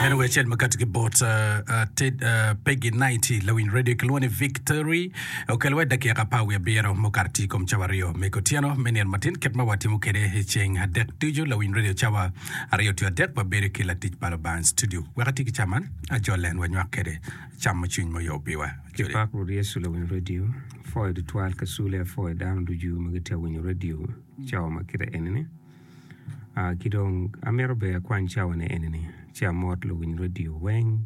En owe acel makati ki bot Peggy 90 lawiny radio kilwongo ni Victory okelo wede dakika apar wiye abiro mukato tye i kom cawa aryo me kutyeno me nino matin kit ma watimo kede i ceng adek ducu lawiny radio cawa aryo tye adek wabedo ki latic pa Lubanga studio wek ati ki ca man ajol en wanywak kede cam ma cwiny moyo piwa Jodi. Pak Rwot Yecu lawiny radio pwoyo tutwal ka sule apwoyo dano ducu ma gitye awinyo radio cawa ma kite enini. Ki dong amito bene akwany cawani enini ci amot luwiny redio weng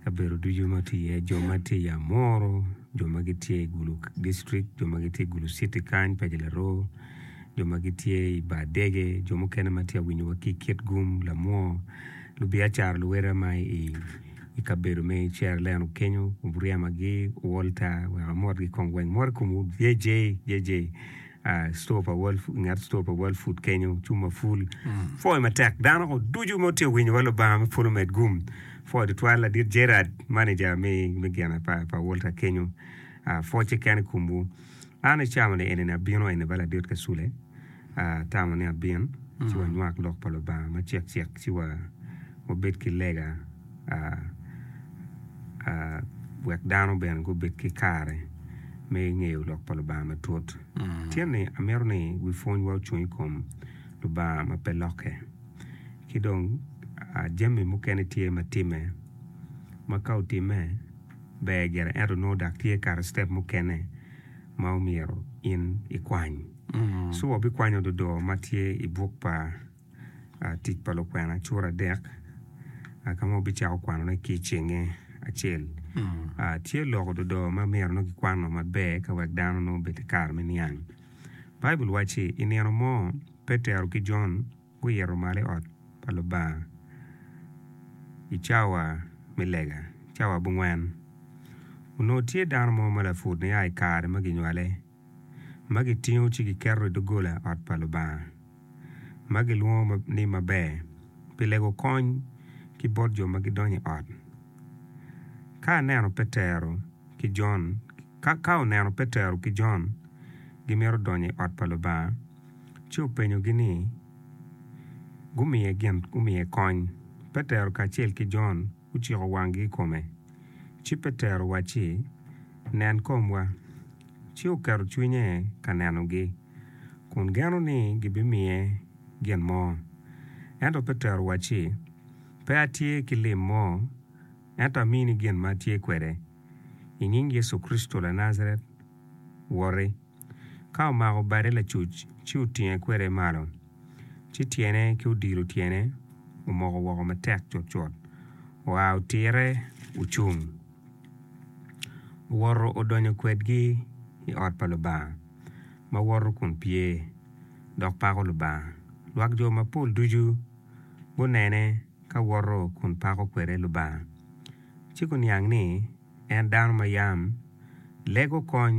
kabedo ducu ma tye iye jo ma tye i Amuru, jo ma gitye i Gulu dictrict, jo ma gitye i Gulu citi kany paci Larwo, jo ma gitye i Bar dege, jo mukene ma tye ka winyowa ki i Kitgum, Lamwo, lubiacara luwotwa ma i kabedo me Ceroleno kenyo Buriamagi, Walter wek amotgi kong weng. Mot i komwu JJ. Ah, store pa World Food, nget store pa World Food kenyo, cung ma full. Pwoyo matek. Dano ko ducu ma tye winyo wa Lubanga me polo med gum. Pwoyo tutwal ladit Gerard, manager me, me gina pa, pa Walter kenyo. Ah, pwocce kene i komwu. An icamo ni enini abino eni ba ladit Kasule. Ah, atamo ni abin, ci wanywak lok pa Lubanga macek cek, ci wa, wabed ki lega. wek dano bene gubed ki kare me ngeyo lok pa Lubanga matut. Tyen ni amito ni wi pwonywa ocung i kom Lubanga ma pe lokke. Ki dong jami mukene tye ma timme ma ka otimme ber gire ento nongo dok tye kare citep mukene ma omyero in ikwany. Ci wabikwanyo dodoo ma tye i buk pa. tic pa lukwena cura adek ka ma wubicako kwanone ki i cenge acel. Tye lok ododo ma myero nongo kikwano maber ka wek dano nongo obed ki kare me niang. Baibul wacci i nino mo Petero ki Jon guito malo i ot pa Lubanga i cawa me lega, cawa abongwen. Onongo tye dano mo ma laput nia i kare ma ginywale. ma gitingo ci giketo i doggola ot pa Lubanga, ma gilwongo ni Maber pi Lego Kony ki bot jo ma gidonyo i ot. Ka oneno Petero ki Jon ka ka oneno Petero ki Jon gimito donyo i ot pa Lubanga, ci openyogi ni gumiye gin gumiye kony. Petero kacel ki Jon. guciko wanggi i kome, ci Petero owacci, Nen komwa. Ci oketo cwinye ka nenogi, kun geno ni gibimiye gin mo. Ento Petero owacci, Pe atye ki lim mo, ento amini gin ma atye kwede, I nying Yecu Kricito Lanajaret, woti! Ka omako bade lacuc, ci otinge kwede malo, ci tyene ki odilo tyene omoko woko matek cutcut. Oa otire ocung, owoto odonyo kwedgi i ot pa Lubanga ma woto kun pye dok pako Lubanga. Lwak jo mapol ducu gunene ka woto kun pako kwede Lubanga, ci guniang ni en dano ma yam lego kony.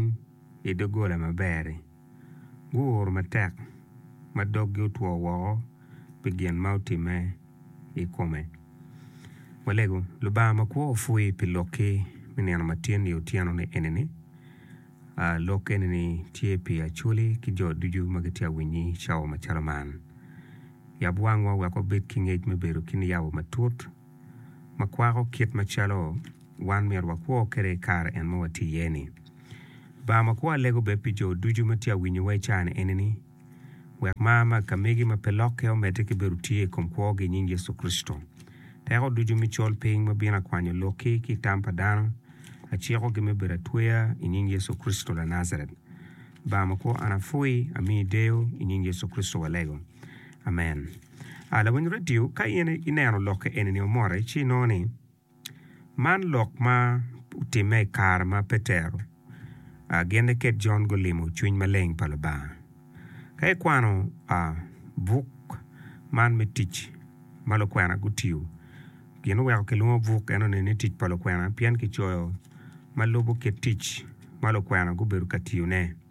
i doggola maber-ri, guur matek ma doggi otwo woko pi gin ma otimme i kome. Walego, Lubanga makwo opwoyi pi lokki me nino matin i otyeno enini. Lok enini tye pi Acholi ki jo ducu ma gitye ka winyi i cawa macalo man. Yab wangwa wek wabed ki ngec me bedo ki niyabo matut. ma kwako kit macalo wan myero wakwo kwede i kare en ma watye iye-ni. Lubanga ma kwo alego bed pi jo ducu ma tye ka winyowa i caa-ni enini, wek mar ma akamegi ma pe lokke omedde ki bedo tye i kom kwogi i nying Yecu Kricito. Teko ducu me col piny ma bino akwanyo lokki ki i tam pa dano, acikogi me bedo atweya i nying Yecu Kricito Lanajaret. Lubanga ma kwo, an apwoyi, amiyi deyo i nying Yecu Kricito walego. Amen. A Lawiny redio, ka in ineno lokke eni-ni omote, ci inongo ni man lok ma otimme i kare ma Petero a gin niket Jon gulimo cwiny maleng pa Lubanga. Ka ikwano a buk man me Tic ma lukwena gutiyo, gin oweko kilwongo buk eno-ni ni Tic pa Lukwena pien kicoyo ma lubo kit tic ma lukwena gubedo ka tiyone.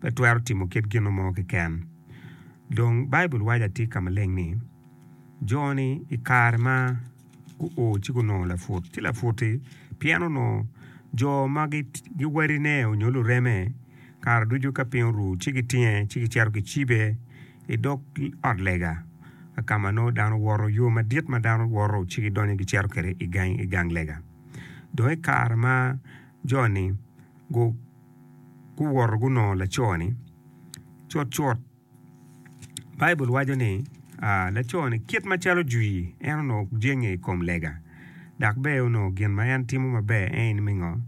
pe twero timo kit gino mo keken. Dong Baibul waco atika maleng ni, Jo-ni i kare ma guo ci gunongo laput ci laputi pien onongo jo ma giwadine nyo lureme kare ducu ka piny oru ci gitinge ci gicito gicibe i dog ot lega ka ma nongo dano woto, yo madit ma dano woto ci gidonyo gicito kwede i gang lega. Dong i kare ma jo-ni gu. guwoto gunongo laco-ni cutcut Baibul waco ni laco-ni kit macalo jwi en onongo jenge i kom lega dok bene onongo gin ma en timo maber en me ngo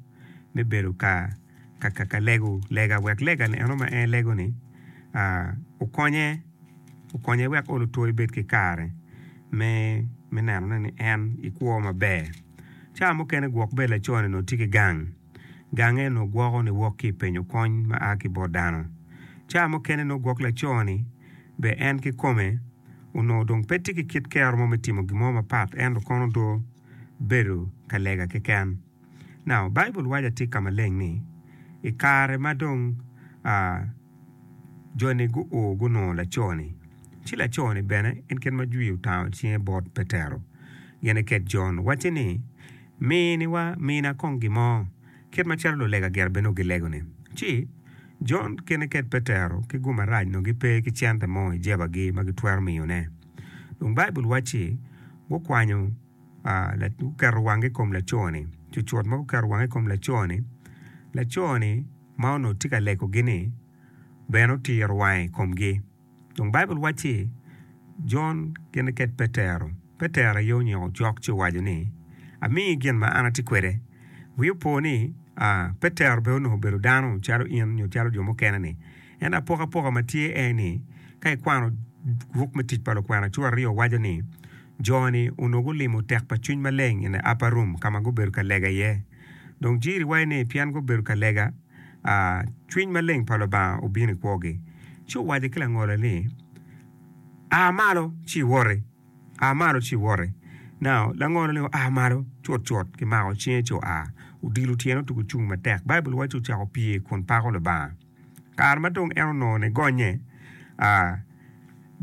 me bedo ka lego lega wek lega-ni eno ma en lego-ni okonye okonye wek olo two ebed ki kare me nenone ni en i kwo maber ca mukene gwok bene laco-ni onongo tye ki gang Gange onongo gwoko niwok ki i penyo kony ma a ki bot dano. Cawa mukene onongo gwok laco-ni, be en kikome onongo dong pe tye ki kit kero mo me timo gin mo mapat ento kono do bedo ka lega keken. Now, Baibul waco atir ka maleng ni, i kare ma dong a jo-ni guo gunongo laco-ni, ci laco-ni bene en kit ma jwi otango cinge bot Petero, gin iket Jon, wacce ni, Miniwa, mina kong gin mo. Kit macalo lulega gire bene ogilegoni, ci, Jon kene ked Petero ki gum marac onongo gipe ki cente mo i jebagi ma gitwero miyone. Dong Baibul wacci, Gukwanyo, la, guketo wangi i kom laco-ni. Cucut ma guketo wangi i kom laco-ni, laco-ni ma onongo tye ka legogi-ni bene otiro wange i komgi. Dong Baibul wacci, Jon gin niket Petero. Petero aye onyiko cok ci owaco ni, Amiyi gin ma an atye kwede. Wi opo ni, Petero bene onongo obedo dano calo in nyo calo jo mukene-ni. Ento apokapoka ma tye en aye ni, ka ikwano buk me Tic pa Lukwena cura aryo waco ni, Jo-ni onongo gulimo tek pa cwiny maleng in the upper room ka ma gubedo ka lega iye. Dong jiri waco ni pien gubedo ka lega, a cwiny maleng pa Lubanga obino i kwogi, ci owaco ki langole ni, 'A malo ci iwoti, a malo ci iwoti. Nao, langolo ni oa malo, cutcut kimako cinge ci oa, odilo tyene otugo cung matek. Baibul waco ni ocako pye kun pako Lubanga. Kare ma dong en onongo ni gonnye, a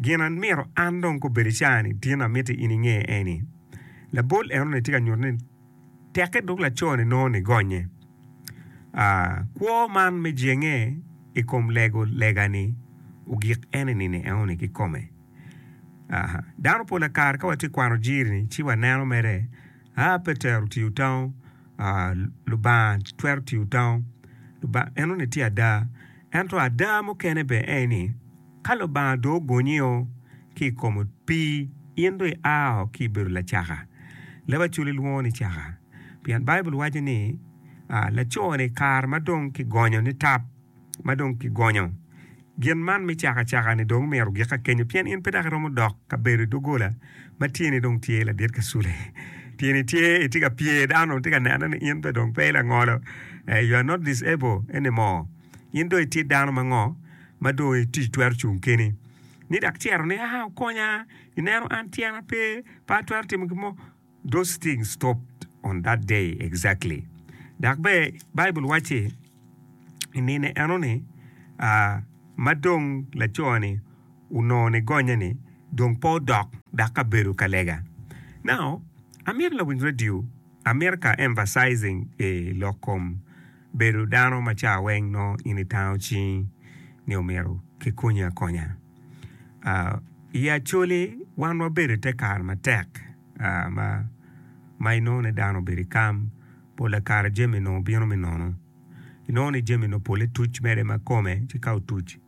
gin a myero an dong ka obedo i caa-ni, tin amiti in inge eni, labol enoni tye ka nyuto ni, Tekke dok laco-ni nongo nigonye. A Kwo man me jenge i kom lego lega-ni ogik en enini enoni kikome. A Dano pol a kare ka watye ka kwano jiri-ni ci waneno mere, A Petero otiyo tango, a Lubanga twero tiyo tango. Lubanga enoni tye ada. Ento ada mukene bene en ni, Ka Lubanga dong ogonyio ki i kom opii, in dong iao ki i bedo lacaka. Leb Acholi lwongo ni caka, pien Baibul waco ni, Laco-ni i kare ma dong kigonyo ni tap, ma dong kigonyo gin man me caka caka-ni dong myero gik akenyo, pien in pe dok iromo dok ka bedo i doggola ma tyeni dong tye ladit ka cule. Tyeni tye, itye ka pye, dano dong tye ka neno ni in dong pe ilangolo, you are not disable anymore. In dong itye dano ma ngo? ma dong i tic twero cung kene ni dak cito ni aa okonya i neno an tyena pe pe atwero timo gin mo those things stopped on that day exactly dok bene Bible wacci i nino enoni aa ma dong laco ni onongo ni gonye ni dong pe odok dok ka bedo ka lega now amito lawiny radio America emphasizing i lok kom bedo dano ma ca weng nongo in itango cingi ni omyero kikonyi akonya. I Acholi wan wabedo i te kare matek ma inongo ni dano obedo i kam, pol pa kare jami onongo bino me nono, inongo ni jami onongo pole tuc mere ma kome ci ka otuc.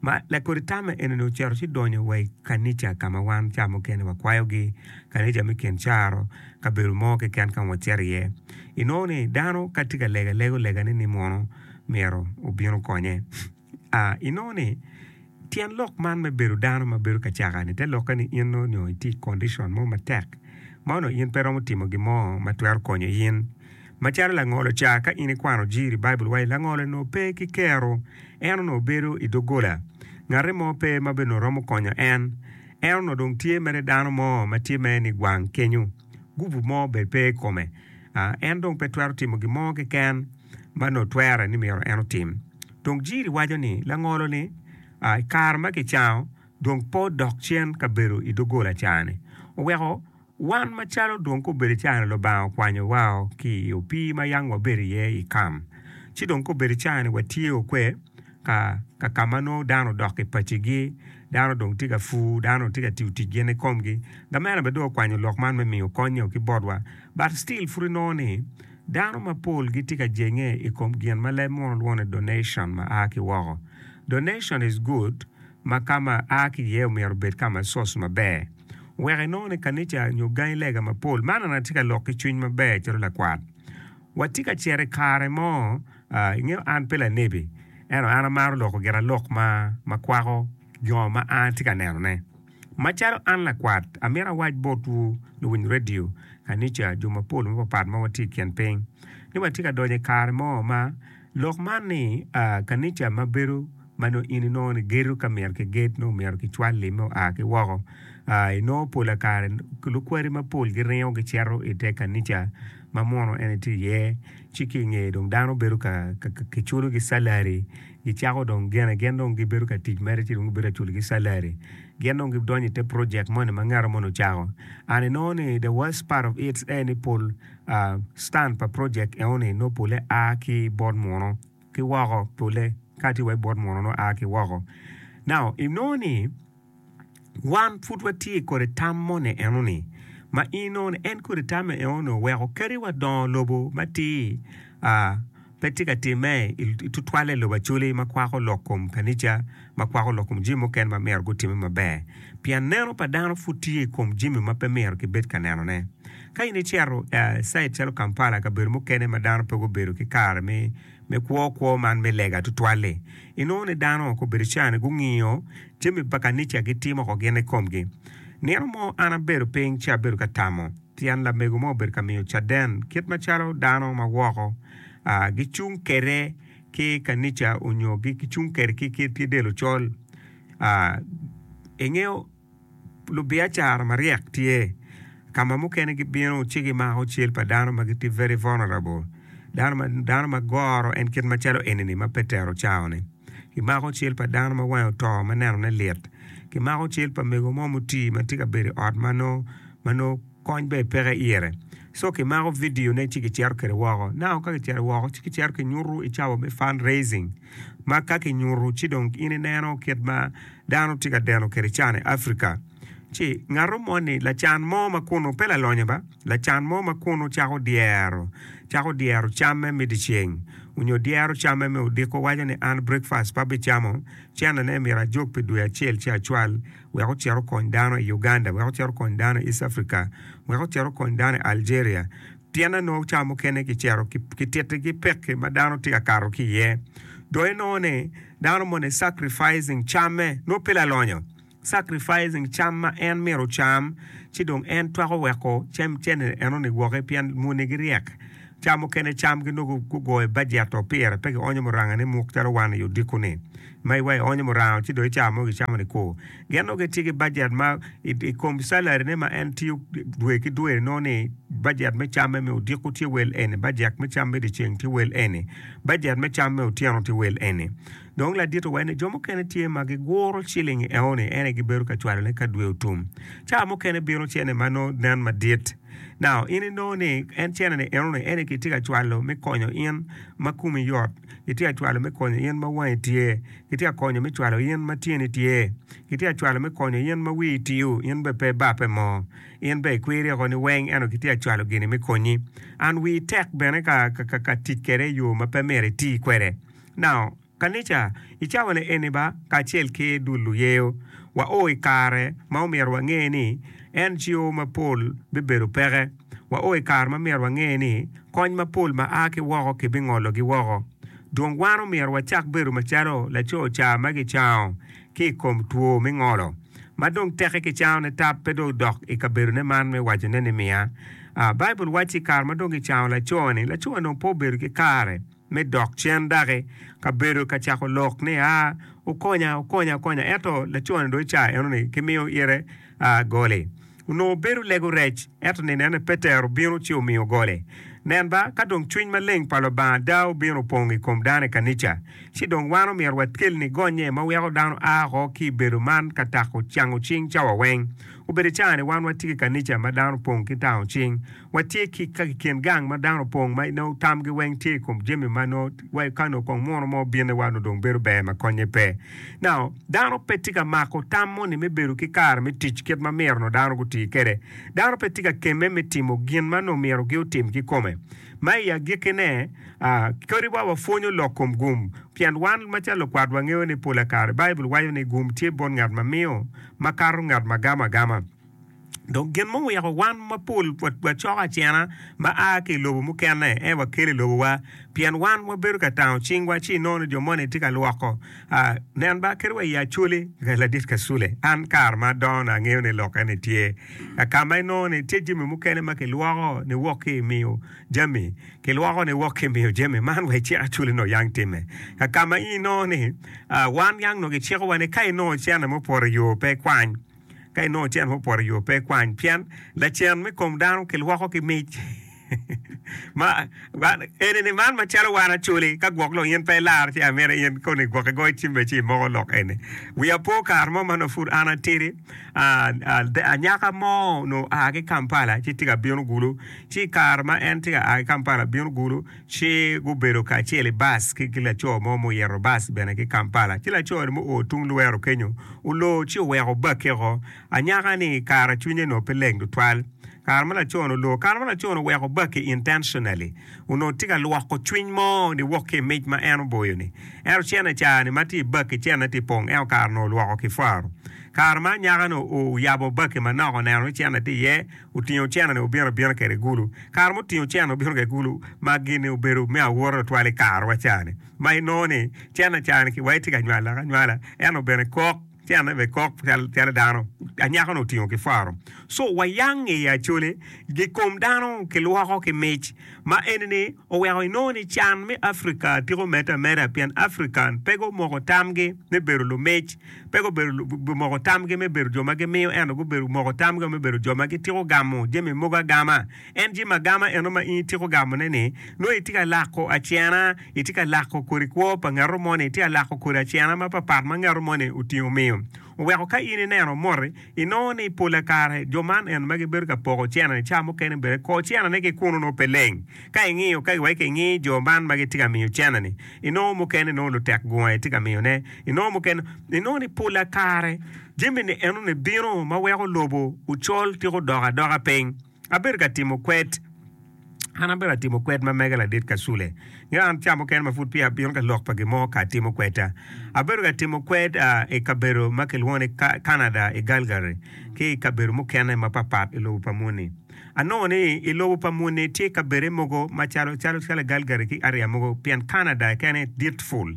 Ma lakodi tamme enini ocito ci donyo wa i kanica ka ma wan ca mukene wakwayogi, kanica me kin caro, kabedo mo keken ka ma wacito iye. Inongo ni dano ka tye ka lego alega olegane ni mono myero obin okonye. Inongo ni tyen lok man me bedo dano ma bedo kacaka-ni te lokke ni in onongo itye i kondicon mo matek ma onongo in pe iromo timo gin mo ma twero konyo in. Macalo langolo ca, ka in ikwano jiri i Baibul wai, langolo onongo pe ki kero. En onongo bedo i doggola. Ngati mo pe ma be onongo romo konyo en. En onongo dong tye mere dano mo ma tye mere nigwang kenyo. Gupu mo be pe i kome. En dong pe twero timo gin mo keken ma onongo twere ni myero en otim. Dong jiri waco ni langolo-ni i kare ma kicango dong pe odok cen ka bedo i doggola ca-ni. Oweko Wan macalo dong kobedo cani Lubanga okwanyo wao ki i opii ma yang wabedo iye i kam, ci dong kobedo cani watye okwe ka ka ka ma nongo dano odok ki paci gi, dano dong tye ka pur, dano dong tye ka tiyo tic gin i komgi, gamena bene dong okwanyo lok man me miyo kony nyo ki botwa, but still pud inongo ni dano mapol gitye ka jenge i kom gin ma leb munu lwongo ni donation ma a ki woko. Donation is good ma ka ma a ki iye omyero obed ka ma source maber wek inongo ni kanica nyo gangi lega mapol man an atye ka lok ki cwiny maber calo lakwat wa tye ka cito ikare mo a ingeyo an pe lanebi ento an amaro loko giralok ma ma kwako jo ma an atye ka neno ne macalo an lakwat amito awac bot wu luwiny radio kanica jo mapol mapapat ma watye ikin piny ni watye ka donyo ikare mo ma Lok man ni, a, kanica ma bedo ma nongo in inongo ni gedo ka myero ki ged nongo myero ki cwal limme oa ki woko. A, inongo pola kare lukwari ma pol gi ringo gi cito i te kanica ma mono en etye iye, ci ki ingeye dong dano bedo ka, ka, ka ki culo gi salary, gi cako dong gene gin dong gi bedo ka tic mere ci dong gi bedo ka culo gi salary. Gin dong gi donyo i te project moni ma ngato moni ocako. And inongo ni the worst part of it en ni pol. Stand pa project enoni nongo pole a ki bot muno ki woko pole ka tye wa i bot muno nongo a ki woko. Now inongo ni wan pud watye kodi tam moni enoni ma in nongo ni en kodi tamme enoni oweko kadi wa dongo lobo matir. pe tye ka timme i tutwalle i lobo Acholi ma kwako lok kom kanica, ma kwako lok kom jami mukene ma myero gutimme maber. Pien neno pa dano pud tye i kom jami ma pe myero kibed ka nenone. Ka in icito i cait calo Kampala, kabedo mukene ma dano pe gubedo ki kare me kwo kwo man me lega tutwal-li, inongo ni dano woko obedo ca-ni gungiyo jami pa kanica gitimo woko gin i komgi. Nino mo an abedo piny ci abedo ka tamo. Tyen lamego mo obedo ka miyo caden kit macalo dano ma woko gicung kwede ki kanica nyo gicung kwede ki tye del ocol. Ingeyo lubiacara maryek tye ka ma mukene gibino ci gimako cal pa dano ma gitye very vulnerable dano ma goro en kit macalo eni ma Petero ocawoni. Kimako cal pa dano ma wange oto ma nenone lit, kimako cal pa mego mo mutii ma tye ka bedo i ot ma nongo. ma nongo kony bene peke ire. So kimako vidio ne ci kicito kwede woko. Now ka kicito woko ci kicito ki nyutu i cawa me fund raising ma ka ki nyutu ci dong in ineno kit ma dano tye ka deno kwede can i Africa. Ci ngato moni lacan mo ma kunu pe lalonyo ba, lacan mo ma kunu cako dyero, cako dyero camme me dyeceng onyo dyero camme me odiko waco ni an breakfast pe abicamo, cene ne myero ajog pi dwe acel ci acwal. wek ocit okony dano i Uganda, wek ocit okony dano i East Africa, wek ocit okony dano i Algeria. Pien anongo ca mukene kicito ki titi ki pekki ma dano tye ka kato ki iye. Dong inongo ni dano moni sacrificing camme, nongo pe lalonyo, sacrificing cam ma en myero ocam ci dong en twako weko cene enoni woko pien moni giryek. Ca mukene cam ginongo gugoyo bajeto pire pe gionyo muranga ni muk calo wan i odiko ni ma iwa ionyo muranga ci dong ica mogo icamo ni kwo. Gen nongo gitye ki bajet ma i kom salary ne ma en tiyo dwe ki dwe ni nongo ni bajet me cam me odiko tye wel eni, bajek me cam me dyeceng tye wel eni, bajet me cam me otyeno tye wel eni. Dong ladito wene, jo mukene tye ma giguro cilingi eoni ene gibedo ka cwalone ka dwe otum. Ca mukene bino cene ma nongo nen madit. Now, in inongo ni en cenene enoni ene kitye ka cwalo me konyo in ma kumi yot, kitye ka cwalo me konyo in ma wangi tye, kitye ka konyo me cwalo in ma tyeni tye, kitye ka cwalo me konyo in ma wii tiu, in bene pe ibape mo. In bene ikwiri oko ni weng eno kitye ka cwalo gini me konyi. And wii tek bene ka ka ka tic kwede i yo ma pe myero iti kwede. Now, kanica, i cawane eni ba, kacel ki dul luyeyo, wao i kare ma omyero wange ni NGO mapol bibedo peke. Wao i kare ma myero wange ni kony mapol ma a ki woko kibingologi woko. Dong wan omyero wacak bedo macalo laco ca ma gicango ki i kom two me ngolo, ma dong teke kicangone tap pe dong dok i kabedone man me wacone ni miya. A, Baibul wacci kare ma dong gicango laco-ni, laco-ni dong pe obedo ki kare. me dok cen daki ka bedo ka cako lok ni, Aa, wukonya, wukonya, wukonya! Ento laco-ni dong i cawa eno-ni kimiyo ite goli. Onongo bedo lego rec, ento ninene Petero obino ci omiyo goli. Nen ba, ka dong cwiny maleng pa Lubanga ada obino opong i kom dano i kanica, ci dong wan omyero wakel ni gonnye ma weko dano a oko ki i bedo man ka tako cango cing cawa weng. Obedo i cawa-ni wan watye ki kanica ma dano opong ki tango cing. Watye ki ka kiken gang ma dano opong ma nongo tamgi weng tye i kom jami ma nongo wa ka nongo kong muno mo bine wa nongo dong bedo ber ma konye pe. Now, dano pe tye ka mako tam moni me bedo ki kare me tic kit ma myero nongo dano guti kwede. Dano pe tye ka kemme me timo gin ma nongo myero giutim kikome. Ma i agikkine, aa, kadi wa wapwonyo lok kom gum, pien wan macalo lukwat wangeyo ni pola kare Baibul waco ni gum tye bot ngat ma miyo makato ngat ma gamo agama. Dong gin muweko wan mapol wacoko acena ma a ki i lobo mukene ento wakele i lobowa, pien wan wabedo ka tango cingwa ci inongo ni jo moni tye ka lwoko. Nen ba, kadi wa i Acholi, Ladit Kasule, an kare ma adongona angeyo ni lok eni tye, ka ma inongo ni tye jami mukene ma kilwoko niwok ki i miyo jami, kilwoko niwok ki i miyo jami man wa icik Acholi nongo yang timme. Ka ma inongo ni wan yang nongo kicikowa ni ka inongo cente mo opoto i yo pe ikwany. Ka inongo cen mo poto i yo, pe ikwany, pien lacen me kom dano kilwoko ki mic. ma eni man macalo wan acoli ka gwok lo in pe ilar ci amene in koni gwok igoyo cimbe ci imoko lok eni wiya po kare mo man pud an atidi anyaka mo no a ki Kampala ci tye ka bino gulu ci kare ma en tye ka a ki Kampala bino gulu Ci gubedo kacel i bas ki laco mo ma oyito bas bene ki Kampala. Ci laco ni muo tung Luweero kenyo, olor ci oweko bakke oko. Anyaka ni kara cwinye onongo pe leng tutwal kare ma laco ni olor. Kare ma laco ni oweko bakke intentionally, onongo tye ka lwoko cwiny mo niwok ki i mic ma en oboyo ni. Ento cene ca ni ma tye i bakke cene tye pong, ento kare onongo olwoko ki faro. Kare ma anyaka ni oyabo bakke manok oneno ni cene tye iye, Otingo ocenna-ni obino abina kwede i gulu. Kare ma otingo ocenna obino kwede i gulu ma gin-ni obedo me awote tutwal i karewa ca-ni, ma inongo ni cenna ca-ni ki wai tye ka nywalak anywala, ento bene kok, cennane bene kok calo dano. Anyaka-nu otingo ki faro. Co wayang i Acoli, i kom dano kilwoko ki mic. Ma eni-ni oweko inongo ni can me Africa tiko medde ameda pien African pe gumoko tamgi me bedo lumic. pe gubedo moko tamgi me bedo jo ma gimiyo ento gubedo moko tamgi me bedo jo ma gitiko gamo jami mogo agama. En jami agama eno ma in itiko gamone-ni, nongo itye ka lako acena, itye ka lako kodi kwo pa ngato moni, itye ka lako kodi acena mapatpat ma ngato moni otingo omiyo. Oweko ka in ineno moti, inongo ni pola kare jo man eno ma gibedo ka poko cene-ni ca mukene bene kor cenane ki kunu nongo pe leng. Ka ingiyo kagi wa ki ingi jo man ma gitye ka miyo cene-ni, inongo mukene nongo lutek gunga itye ka miyone, inongo mukene, inongo ni pol a kare jami-ni enoni bino ma weko lobo ocol tika odok adoka piny. Abedo ka timo kwed, an abedo ka timo kwed ma mege ladit ka Sule. Ngeyo an ca mukene ma pud peya abino ka lok pa gin mo ka atimo kwedda, abedo ka timo kwed i kabedo ma kilwongo ni Ka-Canada i Galgary ki i kabedo mukene mapat pat i lobo pa moni. Anongo ni i lobo pa muni tye kabedde mogo macalo calo calo Galgary ki area mogo pien Canada kene dit ful.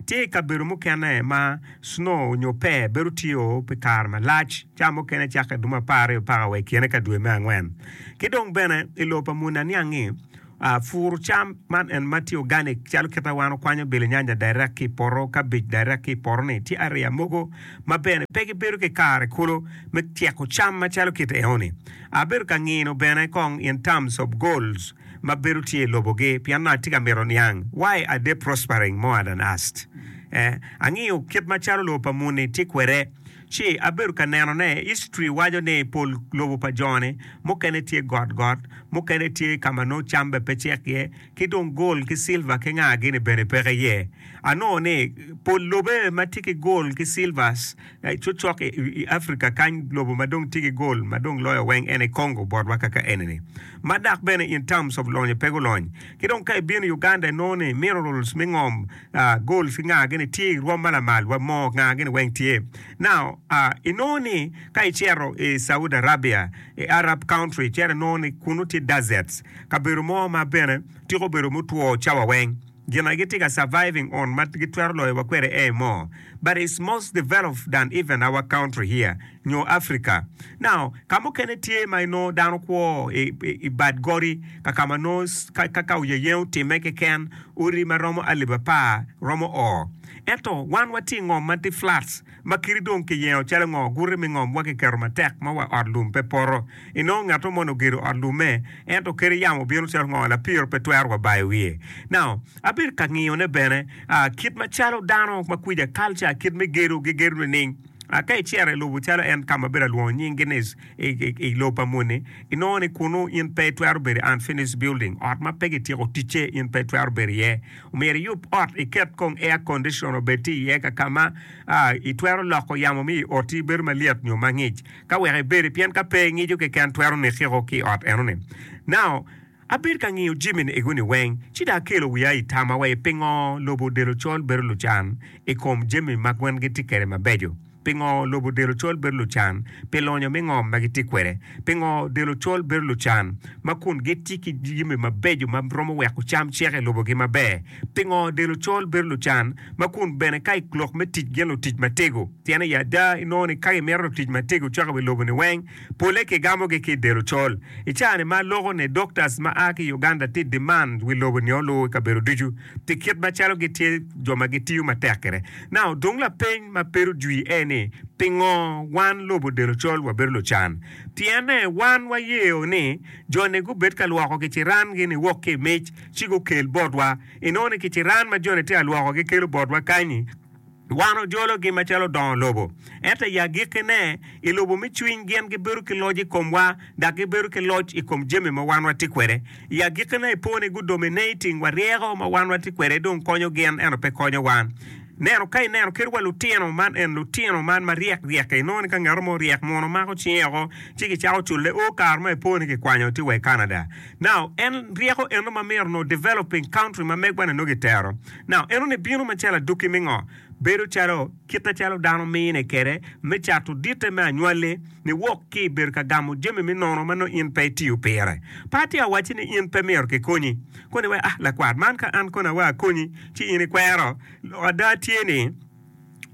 Tye i kabedo mukene ma snow onyo pee bedo tye o pi kare malac ca mukene cako i dumo apar aryo paka wa i kine ka dwe me angwen. Ki dong bene i lobo pa muni aniangi Puru cam, man en ma tye organic calo kit ma wan okwanyo bilinyanya direct ki i poto, kabej direct ki i poto ni tye ariya mogo ma bene pe gibedo ki kare kulu me tyeko cam macalo kit eno ni. Abedo ka ngino bene kong in terms of goals ma bedo tye i lobo gi pien nongo atye ka mito niang why are they prospering more than us. Eh, angiyo kit macalo lobo pa muni tye kwede. Ci abedo ka nenone, history waco ni pol lobo pa jo-ni mukene tye got got, mukene tye ka ma nongo cam bene pe cek iye, ki dong gold ki silver ki nga gini bene peke iye. Anongo ni pol lobe ma tye ki gold ki silvers cocok i i Africa kany lobo ma dong tye ki gold ma dong loyo weng en aye Congo botwa kaka eni-ni. Ma dok bene in terms of lonyo pe gulony. Ki dong ka ibino Uganda inongo ni minerals me ngom a, gold ki nga gini tye irwom ma lamal wa moo nga gini weng tye now a inongo ni ka icito i Saudi Arabia i Arab country icito inongo ni kunu tye deserts kabedo mo ma bene tiko bedo mutwo cawa weng gin a gitye ka surviving on ma gitwero loyo wa kwede aye moo but is most developed than even our country here nyo Africa. Now, ka mukene tye ma inongo dano kwo i, i, i bad godi, kaka ma nongo ka, ka, ka oyeyengo otimme keken, odi ma romo alip apar romo o. Ento wan watye i ngom ma tye flats, ma kiti dong kiyengo calo ngo, guti me ngom wa kiketo matek ma wa ot lum pe poto. Inongo ngato moni ogedo ot lumme, ento kadi yamo obino calo ngo, lapiro pe twero wa bayo wiye. Now, abedo ka ngiyone bene, ah, kit macalo dano ma kwica, culture, kit me gedo, gigedo nining? A Ka icito i lobo calo en ka ma abino alwongo nying Genes i lobo pa moni, inongo ni kunnu in pe itwero bedo i unfinished building, ot ma pe kityeko ticce, in pe itwero bedo iye. Omyero iyub ot, iket kong air condition obed tye iye ka ka ma itwero loko yamo me i oti bedo malyet nyo mangic ka wek ibedi, pien ka pe ngico keken twero nikiko ki i ot enoni. Now, Abedo ka ngiyo jamini egoni weng, ci dong akelo wiya i tama wa i pingo lobo delo col bedo lucan i kom jami ma gwen gitye kwede mabeco. Pingo lobo delo col bedo lucan pi lonyo me ngom ma gitye kwede. Pingo delo col bedo lucan ma kun gitye ki jami mabeco ma romo weko cam cek i lobogi maber. Pingo delo col bedo lucan ma kun bene ka i lok me tic gin lutic matego. Pien aye ada inongo ni ka gimito lutic matego cok i wi loboni weng, Polle kigamogi ki i del ocol. I caa-ni ma loko-ni, doctors ma a ki Uganda tye i demand wi lobo nio luu i kabedo ducu pi kit macalo gitye jo ma gitiyo matek kwede. Now, dung lapeny ma pedo jwi aye ni, pingo wan lobo del ocol wabedo lucan? Pienne wan wayeo ni jo-ni gubed ka lwoko kiciran-gi niwok ki i mic ci gukel botwa. Inongo ni kiciran ma jo-ni tye ka lwokogi kelo botwa kany-ni, Wan ojologi macalo dongo lobo. Ento i agikkine, i lobo me cwiny gin gibedo ki loc i komwa dok gibedo ki loc i kom jami ma wan watye kwede. I agikkine, i po ni gu dominating wa ryeko ma wan watye kwede dong konyo gin ento pe konyo wan. Neno ka ineno kit wa lutino man en lutino man ma ryek ryek-ki, inongo ni ka ngat mo oryek muno omako cinge oko ci gicako cule o kare ma i po ni kikwanyo tye wa i Canada. Now, en ryeko eno ma myero nongo developing country ma megwa-ni nongo gitero. Now, enoni bino macalo adukki me ngo? Bedo calo kite calo dano mine kede me cato dite me anywali ni wok ki ibedo ka gamo jami me nono ma nongo in pe itiyo pire. Pe atye awacci ni in pe myero ki konyi. Koni wai, ah lakwat man ka an koni awai akonyi ci in ikwero? Lok ada tye ni.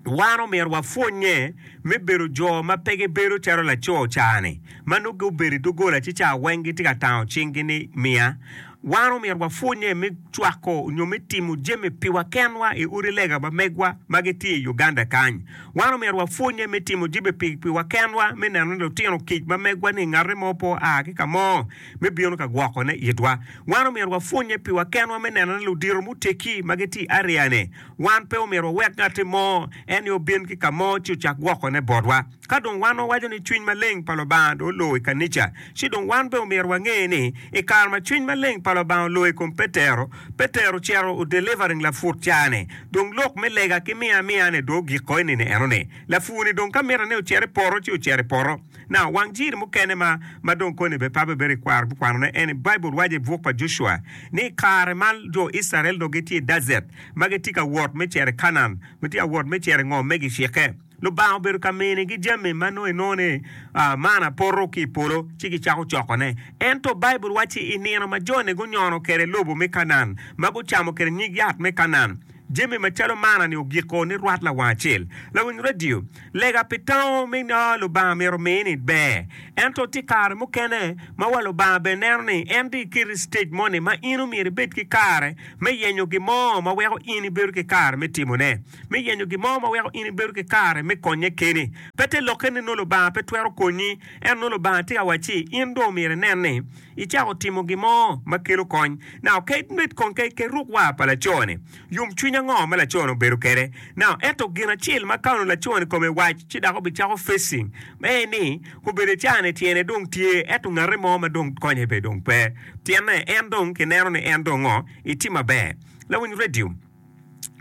wan omyero wapwonnye me bedo jo ma pe gibedo calo laco ca-ni ma nongo gubedo i doggola ci ca weng gitye ka tango cinggi ni, Miya. Wan omyero wapwonnye me cwako nyo me timo jami piwa kenwa i odi lega pa megwa ma gitye i Uganda kany. Wan omyero wapwonnye me timo jami piwa kenwa me neno ni lutino kic ma megwa-ni ngate mo pe oa ki ka mo me bino ka gwokone itwa. Wan omyero wapwonnye piwa kenwa me neno ni ludito muteggi ma gitye i areane Wan pe omyero wawek ngatti mo en ni obin ki ka mo ci ocak gwokone botwa. Ka dong wan wawaco ni cwiny maleng pa Lubanga dong olor i kanica, ci dong wan bene omyero wange ni i kare ma cwiny maleng pa Lubanga olor i kom Petero, Petero ocito o delivering laput ca-ni. Dong lok me lega ki miya amiya-ni dong ogiko i nino eno-ni. Lapur-ni dong ka mite ni ocit i poto ci ocit i poto. Now, wang jiri mukene ma ma dong koni bene pe abibedo i kwaro bikwanone en ni Baibul waco i buk pa Jocua ni i kare ma jo Icrael dong gitye i dacet ma gitye ka wot me cito i Kanaan, gitye ka wot me cito i ngom me gicikke, Lubanga obedo ka minigi jami ma nongo inongo ni manna poto ki i polo ci gicako cokone. Ento Baibul waco ni i nino ma joni gunyono kwede lobo me Kanaan, ma gucamo kwede nyig yat me Kanaan, Jami macalo manna-ni ogiko ni rwat lawang acel, lawiny radio, lega pi tango me ngo Lubanga myero omi ni ber. Ento tye kare mukene ma wa Lubanga bene neno ni en dong iketi i citej moni ma in omyero ibed ki kare me yenyo gin mo ma weko in ibedo ki kare me timone, me yenyo gin mo ma weko in ibedo ki kare me konye keni. Pe te lokke ni nongo Lubanga pe twero konyi, ento nongo Lubanga tye ka wacci in dong omyero inen ni icako timo gin mo ma kelo kony. Nao kadi bed kong ka iket ruk war pa laco-ni, yomcwiny ango ma laco-ni obedo kwede? Nao ento gin acel ma ka onongo laco-ni i kome wac ci dok obicako facing ma en ni, Obedo i caa-ni tyene dong tye, ento ngate mo ma dong konye be dong pe. Pienne en dong kineno ni en dong ngo, itye maber. Lawiny radio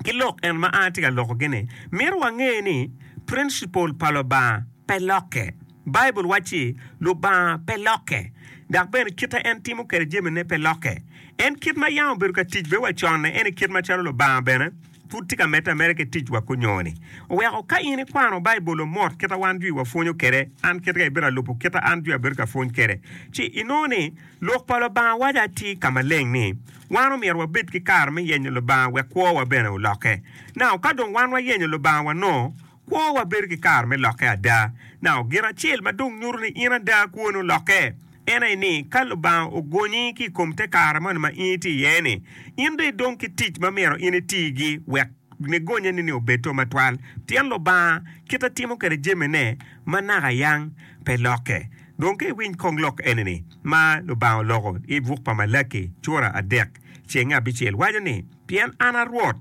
ki lok en ma an atye ka lokogi-ni mito wange ni principle pa Lubanga pe lokke. Baibul wacci, Lubanga pe lokke, dok bene kite en timo kwede jamine pe lokke. En kit ma yam obedo ka tic bene wa conne, en i kit macalo Lubanga bene pud tye ka medde ameda ki ticwa kunyo-ni. Oweko ka in ikwano Baibul o mot kit a wan jwi wapwonyo kwede, an kit ka ibito alubo kit a an jwi abedo ka pwony kwede, ci inongo ni Lok pa Lubanga waco atir ka maleng ni, wan omyero wabed ki kare me yenyo Lubanga wek kwowa bene olokke. Nao ka dong wan wayenyo Lubanga wanongo Kwowa bedo ki kare me lokke ada. Nao gin acel ma dong nyuto ni in ada kwoni olokke, en aye ni ka Lubanga ogonyi ki i kom te kare moni ma in itye iye-ni, in dong idong ki tic ma myero in itigi wek nigonyeni-ni obed to matwal, pien Lubanga kit ma timo kwede jamine ma naka yang pe lokke. Dong ka iwiny kong lok eni-ni ma Lubanga oloko i buk pa Malaki cura adek, Ceng abicel waco ni, Pien an a Rwot,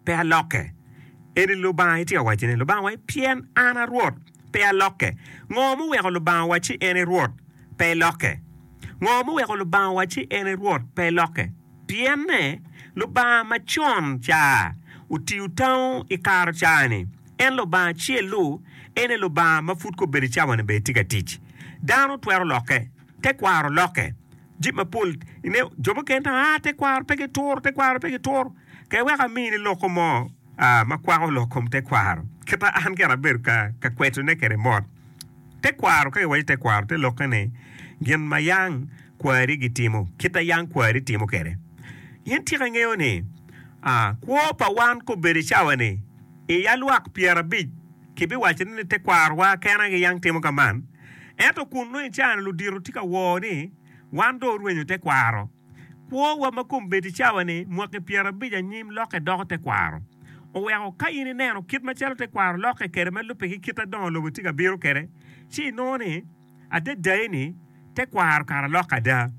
pe alokke. Eni Lubanga itye ka wacci ni, Lubangawa ni, 'Pien an a Rwot, pe alokke. Ngo muweko Lubanga wacci en i Rwot? Pe ilokke. Ngo muweko Lubanga wacci en i Rwot? Pe ilokke. Pienne, Lubanga macon ca otiyo tango i karo cani, en Lubanga acel-lu, en aye Lubanga ma pud kobedo i cawani bene tye ka tic. Dano twero lokke? Tekwaro lokke? Jami mapol nge jo mukene to aa tekwaro pe ki turo tekwaro pe ki turo kek wek amini loko mo ma kwako lok kom tekwaro kita an kit abedo ka kweto ne kede mot tekwaro ka kiwaco tekwaro te lokke ni gin ma yang kwari gitimo kita yang kwari timo kede in tika ingeyo ni kwo pa wan kobedo cawa ni iya lwak pyera abic Kibiwacone ni tekwarowa kene aye giyang timo ka man. Ento kunnu i caa-ni ludito tye ka wor ni wan dong orwenyo tekwaro. Kwowa ma kombeddi cawa-ni, mwaki pyerabic anyim lokke doko tekwaro. Oweko ka in ineno kit macalo tekwaro lokke kwede me lubbe ki kit adongo lobo tye ka bino kwede, ci inongo ni, Adadai ni, tekwaro kara lok ada!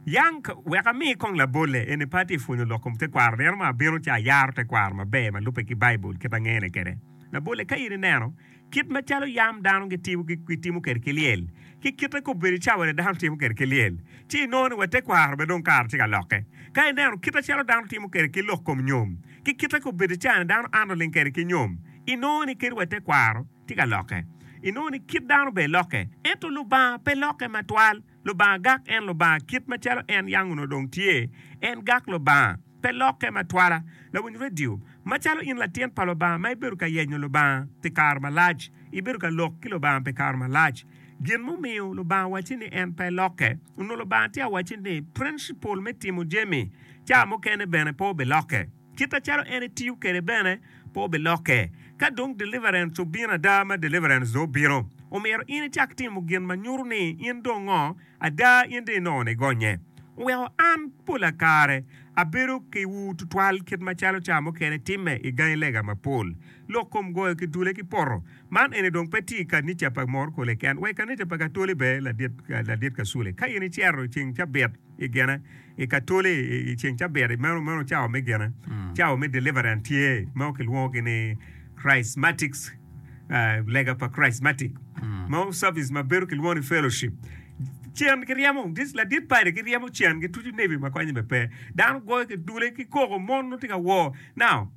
Yang wek ami kong labolle eni pe atye pwonyo lok kom tekwaro. Nino ma abino ci ayaro tekwaro maber ma lubbe ki Baibul kit angene kwede. Labole, ka in ineno kit macalo yam dano gitimo kwede ki lyel, ki kite kop bene cawane dano timo kwede ki lyel, ci inongo ni wa tekwaro bene dong kare tye ka lokke. Ka ineno kit acalo dano timo kwede ki lok kom nyom, ki kite kop bene cawane dano anto ling kwede ki nyom, inongo ni kadi wa tekwaro tye ka lokke. Inongo ni kit dano bene lokke, ento Lubanga pe lokke matwal. Lubanga gak en Lubanga kit macalo en yang onongo dong tye. En gak Lubanga. Pe lokke ma twala. Lawiny radio, macalo in latin pa Lubanga ma ibedo ka yenyo Lubanga pi kare malac, ibedo ka lok ki Lubanga pi kare malac. Gin mumiyo Lubanga wacci ni en pe lokke, onongo Lubanga tye awacci ni principle me timo jami ca mukene bene pe obilokke. Kite calo en etiyo kwede bene pe obilokke. Ka dong deliverance obino ada ma deliverance dong obino, omyero in icak timo gin ma nyuto ni in dong ngo ada in dong inongo ni gonye. Oweko an pola kare abedo kiwu tutwal kit macalo ca mukene timme i gangi lega mapol, lok kom goyo ki dule ki poto. Man eni dong pe tye i kanica pa morkole ken, wa i kanica pa katoli bene ladit ka sule ka in icero i ceng cabit. i gine i katoli i ceng cabit meno meno cawa me gine cawa me deliverance tye mogo kilwongo gi ni chrismatic lega pa chrismatic mo service ma bedo kilwongo ni fellowship cen giryemo this ladit party giryemo cen gituco nebi ma konye be pe dano goyo ki dule ki koko mon nongo tye ka wor now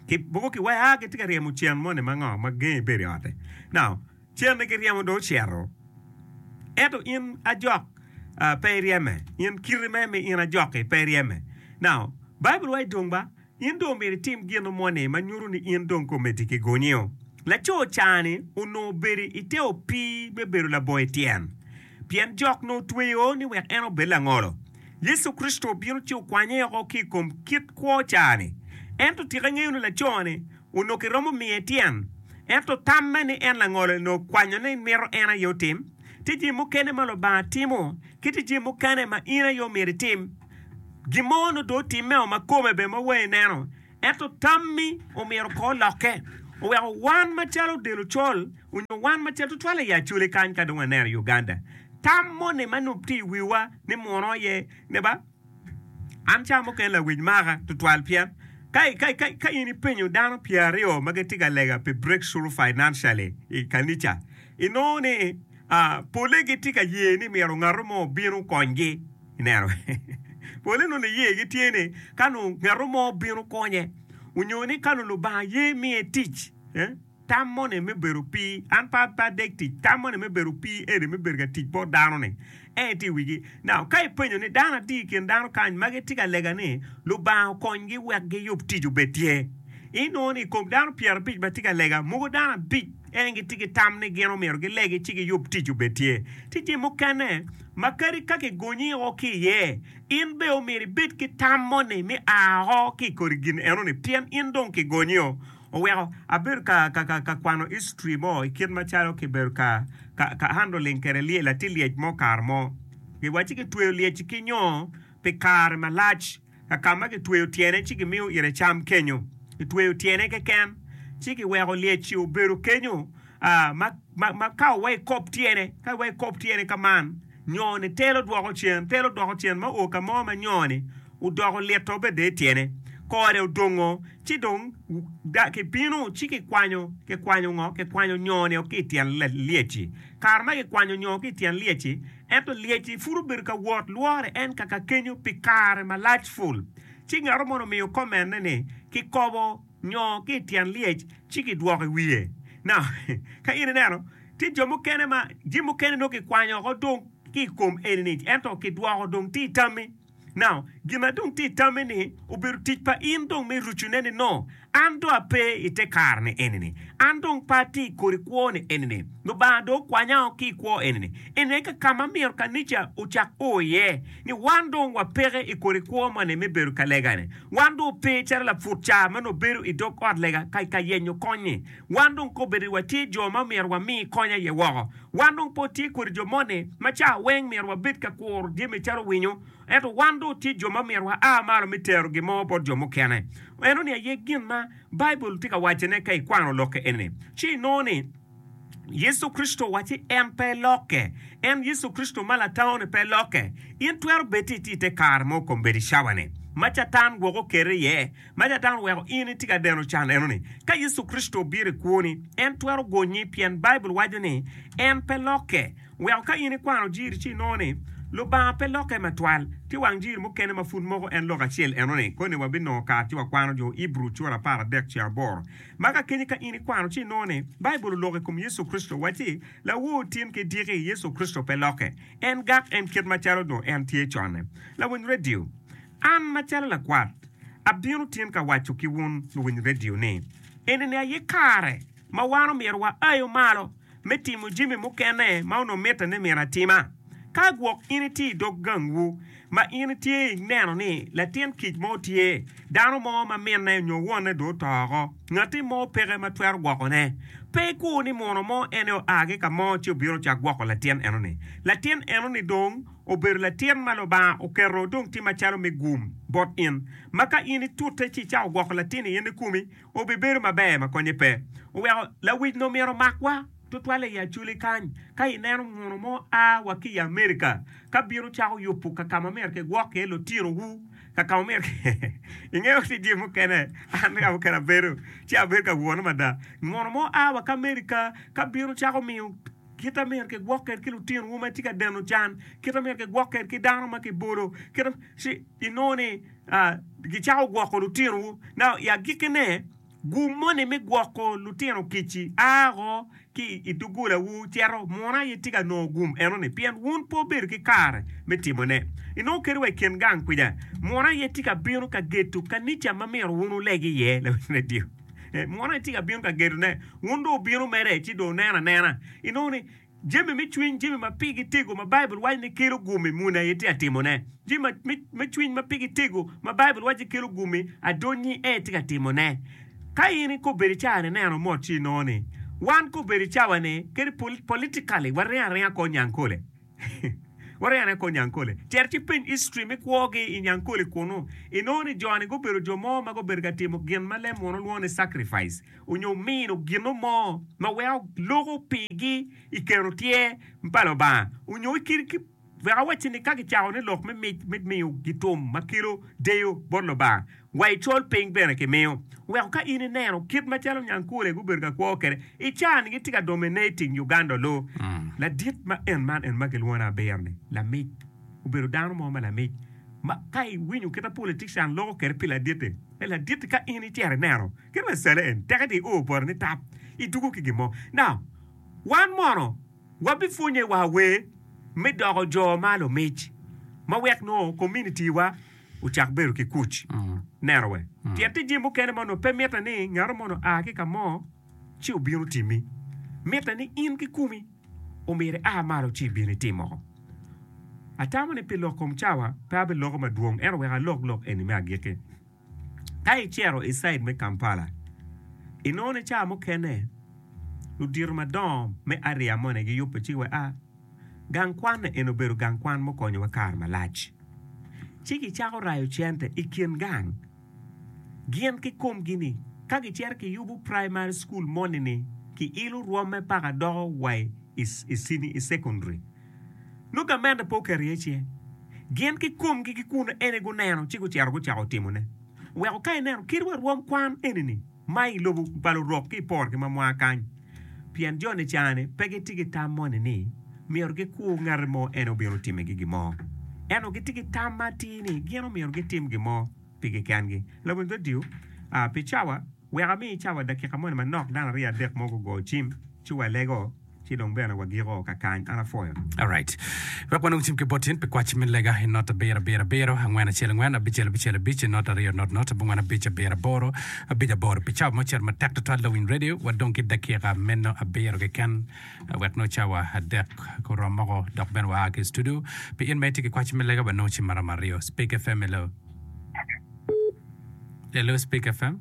ki mogo ki wai a gitye ka ryemo cen moni ma ngo ma gengi bedo i ote now Cerne ki ryemo dong ocito. Ento in ajok pe iryeme, in kiti me mi in ajok-ki pe iryeme. Now, Baibul waco dong ba, in dong myero itim gin mo ni ma nyuto ni in dong komiti kigonyo. Laco ca-ni onongo obedo i te opii me bedo laboyo tyen, pien jok onongo otweyo ni wek en obed langolo. Yecu Kricito obino ci okwanye oko ki i kom kit kwo ca-ni. Ento tika ingeyo ni laco-ni Onongo kiromo miye tyen. Ento tamme ni en langolo onongo kwanyo ni mito en aye otim tye jami mukene ma Lubanga timo ki tye jami mukene ma in aye omyero itim. Gin mo onongo dong otimmeo ma kome bene ma wangi neno. Ento tammi omyero kong olokke. Oweko wan macalo del ocol onyo wan macalo tutwale i Acholi kany ka dong waneno i Uganda, tam moni ma nongo tye i wiwa ni muno aye ne ba? An ca mukene lawic maka tutwal pien ka in ipenyo dano pye aryo ma gitye ka lega pi Breakthrough Financially i kanica, inongo ni pole gitye ka ye ni myero ngatu mo obin okonygi. Ineno? Pole nongo niyegi tye ni ka nongo ngatu mo obin okonye, onyo ni ka nongo Lubanga ye miye tic. Tam moni me bedo pi an pe adek tic, tam moni me bedo pi eni me bedo ka tic bot dano-ni aye tye i wigi. Now, ka ipenyo ni dano adi i kin dano kany ma gitye ka lega ni Lubanga okonygi wek giyub tic obed tye, inongo ni i kom dano pyerabic ma tye ka lega, mogo dano abic en gitye ki tam ni gin omyero gilegi ci giyub tic obed tye. Tye jami mukene ma kadi ka kigonyi o ki iye, in bene omyero ibed ki tam moni me a o ki i kodi gin eno-ni pien in dong kigonyi o. Oweko abedo ka kwano history mo i kit macalo ki bedo ka handling kwede lyel, atye lyec mo kare mo gi wacci ki tweyo lyeci ki nyo pi kare malac ka ka ma ki tweyo tyene ci ki miyo ite cam kenyo, ki tweyo tyene keken ci ki weko lyeci obedo kenyo. ma ka owa i kop tyene, ka iwa i kop tyene ka man, nyone telo dwoko cen, telo dwoko cen ma o ka mo ma nyone odoko lito bede i tyene, kore odongo, ci dong ki bino ci ki kwanyo, ki kwanyo ngo? Ki kwanyo nyone o ki i tyen lyecci. Kare ma ki kwanyo nyo ki i tyen lyecci, ento lyecci pud obedo ka wot lwore en kaka kenyo pi kare malac ful. Ci ngato moni omiyo komenne ni, ki kobo. nyo ki i tyen lyec ci kidwoko i wiye. Na, ka in ineno, tye jo mukene ma jami mukene dong kikwanyo oko dong ki i kom eni-ni, ento kidwoko dong tye i tammi. Na, gin ma dong tye i tammi-ni obedo tic pa in dong me rucune ni nongo an dong ape i te kare-ni eni-ni, an dong pe atye i kodi kwo-ni eni-ni, Lubanga dong okwanyao ki i kwo eni-ni. Eni aye kaka ma myero kanica ocak o iye, ni wan dong wapeke i kodi kwo moni me bedo ka lega-ni. Wan dong wape calo laput ca ma nongo bedo i dog ot lega ka yenyo kony-nyi. Wan dong kobbe ni watye jo ma myero wami kony aye woko. Wan dong pe watye kwede jo moni ma ca weng myero wabed ka kuro jami calo winyo, ento wan dong watye jo ma myero waa malo me tero gin mo bot jo mukene. Eno-ni aye gin ma Baibul tye ka wacone ka ikwano lokke eni-ni, ci inongo ni, Yecu Kricito owacci en pe lokke. En Yecu Kricito ma Latangoni pe lokke. In twero bed ni itye i te kare mo kombeddi cawa-ni ma Catan gwoko keri iye, ma Catan oweko in itye ka deno can eno-ni. Ka Yecu Kricito obiro i kwoni, en twero gonyi pien Baibul waco ni en pe lokke. Weko ka in ikwano Jiri ci inongo ni Lubanga pe lokke matwal. Tye wang Jiri mukene ma pud moko en lok acel eno-ni. Koni wabinongo kare ci wakwano Jo Ibru cura apar adek ce aboro. Ma kakeni ka in ikwano ci inongo ni Baibul oloko i kom Yecu Kricito wacci, Lawor tin ki diki, Yecu Kricito pe lokke. En gak en kit macalo nongo en tye conne. Lawiny redio, An macalo lakwat, abino tin ka waco ki wun luwiny redio ni, enini aye kare ma wan omyero waayo malo. me timo jami mukene ma onongo mitte ni myero atima. Ka gwok in itye i dog gangwu ma in itye ineno ni latin kic mo tye, dano mo ma minne nyo wonne dong oto woko, ngatti mo peke ma twero gwokone, pe ikur ni muno mo en aye oa ki ka mo ci obino ocako gwoko latin eno-ni. Latin eno-ni dong obedo latin ma Lubanga oketo dong tye macalo me gum bot in, ma ka in itute ci icako gwoko latin-ni in ikumi, Obibedo maber ma konye pe oweko lawic-ni omito makwa tutwalle i Acholi kany. Ka ineno muno mo a wa ki i Amerika ka bino cako yubo ka ka ma myero kigwok iye lutinowu, ka ka ma myero ki. Ingeyo ni jemi mukene an bene ka mukene abedo, ci abedo ka wone mada. Muno mo a wa ki Amerika ka bino cako miyo kit ma myero kigwok kwede ki lutinowu ma tye ka deno can, kit ma myero kigwok kwede ki dano ma kibolo, kit ma. Ci inongo ni. Gicako gwoko lutinowu. I agikkine, gum moni me gwoko lutino kic-ci a woko ki i doggolawu cito. Munu aye itye ka nongo gum enoni pien wun pe wubedo ki kare me timone. Inongo kadi wa i kin gang kwica, munu aye itye ka bino ka gedo kanica ma myero wun wuleg iye. Munu aye itye ka bino ka gedone, wun dong wubino mere ci dong wunen anena. Inongo ni Jami me cwiny, jami ma pigi tego ma Baibul waco ni kelo gumi, muni aye tye ka timone. Jami me cwiny ma pigi tego ma Baibul waco ni kelo gumi, adonnyi aye itye ka timone. Ka in ikobe ni caa ni neno mot ci inongo ni wan kobe ni cawa ni kadi politically waringo aringa kor Nyankole. Waringo aringa kor Nyankole. Cito ci ipeny history me kwogi i Nyankole kunu, inongo ni jo ni gubedo jo mo ma gubedo ka timo gin ma lem muno lwongo ni sacrifice. onyo mino gino mo ma weko loko pigi i kero tyer pa Lubanga, onyo wek awacci ni ka gicako ni lok me mic me miyo gitum ma kelo deyo bot Lubanga wa i col piny bene kimiyo, weko ka in ineno kit macalo Nyankole gubedo ka kwo kwede i caa-ni gitye ka domine i ting Uganda olo. Ladit ma en man en ma kilwongo ni Abir-ni lamic, obedo dano mo ma lamic ma ka iwinyo kita politician loko kwede pi ladite, Me ladit, ka in icito ineno kit ma ecale en, tek eti iur boti ni tap, itugo ki gin mo. Now, wan mono wabipwonye wa wer me doko jo ma lumic ma wek nongo community wa ocak bedo ki kuc. Neno wer. Pien tye jami mukene ma onongo pe mitte ni ngatu mono a ki ka mo. ci obino timmi. Mitte ni in ki kumi omyero ia malo ci ibin itim moko. Atamo ni pi lok kom cawa pe abiloko madwong ento wek alok lok eni me agikki. Ka icito i cid me Kampala, inongo ni cawa mukene ludito madongo me aria moni giyubbe ci wea gang kwan eni obedo gang kwan mukonyowa kare malac. Ci gicako rayo cente i kin gang. gin ki komgi ni ka gicito kiyubu praimari cukul moni ni kiilo rwome paka doko wa i cekondaria. Nongo gamente pe oketo iye cinge. Gin ki komgi ki kun eni guneno ci gucito gucako timone. Weko ka ineno kit wa rwom kwan eni-ni, ma i lobo pa lurok ki i porgi ma mwaka kany, pien jo Nicane pe gitye ki tam moni ni myero gikur ngati mo en obino timigi gin mo, ento gitye ki tam ma atir ni gin omyero gitim gin mo pigi kengi. Lawiny redio pi cawa, Wek ami cawa dakika moni manok, dano aryo adek mo gugo cim ci walego. Ci dong bene wagiko ka kany an apwoyo. Alright. Wek wanong cim ki bot in pi kwaci me lega i not abiro abiro abiro, angwen acel angwen, abicel abicel abic, not aryo not not, abongwen abic abiro aboro, abic aboro. Pi cawa mo ocito matek tutwal Lawiny Radio, wadong ki dakika meno abiro keken wek nongo cawa adek gurom moko dok bene waa ki i studio. Pi in ma itye ki kwaci me lega wanongo cim maromo aryo. Speak FM, hello. Hello, Speak FM.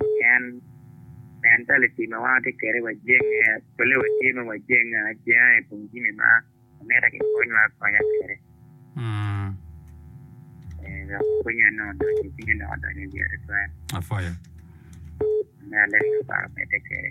Pien nen talici ma wan watye kwede wajenge, polle watye ma wajenge ajenga i kom jami ma mitte kikonywa akonya kwede. Dok pwonye nongo odonyo i cinga, dok adonyo i wiye tutwal. Meno leb ma Lubanga omedde kwede.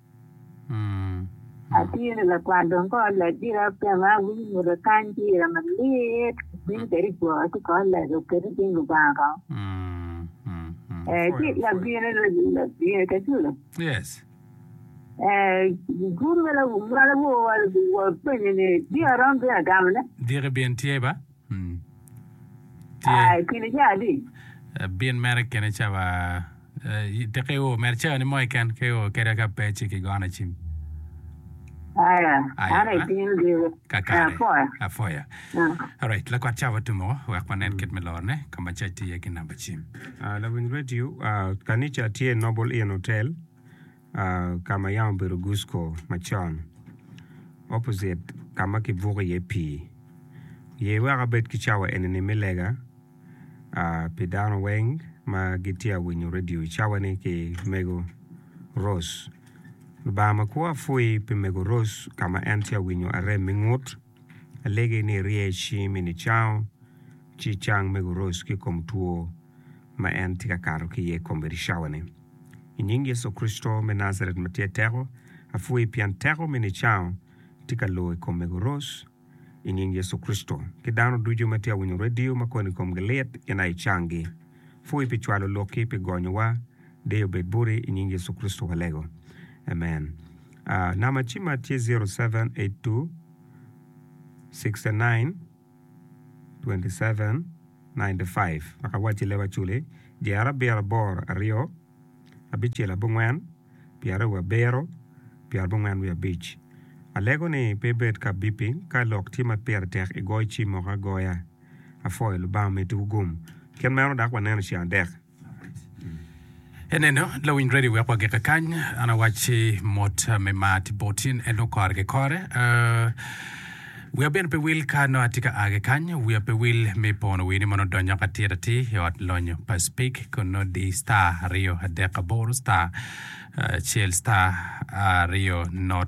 Atye lakwat dong kor lec gire apema awinyo mwodo kany ki ira malit bino kede i gwoka ci kor lec oketi cing Lubanga kong ee ci labino labino caculo ee gurume ma lawowa openyo ni diki aromo bino agamone. Aa, kine ca adi? Abin mere kine ca wa. Te ka iwo mere ca ni mo keken, ka iwo keda ka pe ci kigono acim. Aya, Aya, an eh? atin diro. Kakare. Apoya. Apoya. Ah. Alright, lakwat ca watumo wek wanen kit me lorone. Ka ma ca tye ki namba cim. Ah, lawiny redio, ah, kanica tye Noble Inn Hotel. ka ma yam obedo Gusco macon, opposite ka ma kibuko iye pii. Ye wek abed ki cawa eni-ni me lega pi dano weng ma gitye ka winyo redio i cawa-ni ki mego Rose. Lubanga makwo apwoyi pi mego Rose ka ma en tye ka winyo arem me ngut. Alegi ni irye i cing mi nicango, ci icang me guroc ki i kom two ma en tye ka kato ki iye kome i cawa-ni. I nying Yecu Kricito me Najaret ma tye teko, apwoyi pien teko mi nicango tye ka lor i kome guroc i nying Yecu Kricito. Ki dano ducu ma tye ka winyo redio ma koni komgi lit gin aye icanggi. Pwoyi pi cwalo lokki pi gonyowa. Deyo obed boti i nying Yecu Kricito walego. Amen. Uh, namba cima tye 0782 69 27 95. Maka wacci leba aculi dyere abiro aboro aryo abicel abongwen pyeraryo wa abiro pyera bongwen wiye abic. Alego ni pe ibed ka beeping ka lok tye ma pire tek igoyo cim moko agoya. Afoyo Lubanga omeddi wu gum. Kit meno dak waneno ceng adek. Eneno, lawiny ready wek wagike kany. An awacci mot me mar tye bot in, en dong kore ki kore. Uh, wiya bene pe wil ka nongo atye ka a ki kany, wiya pe wil me pono wii ni mono donyo ka tit atir i ot lonyo pa Speke kun nongo di star aryo adek aboro star acel star aryo not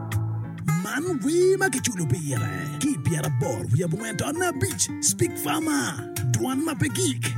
Man wer ma kiculo pire ki i pyeraboro wiye abongwen taon abic, Speak Farmer, dwan ma pe gik.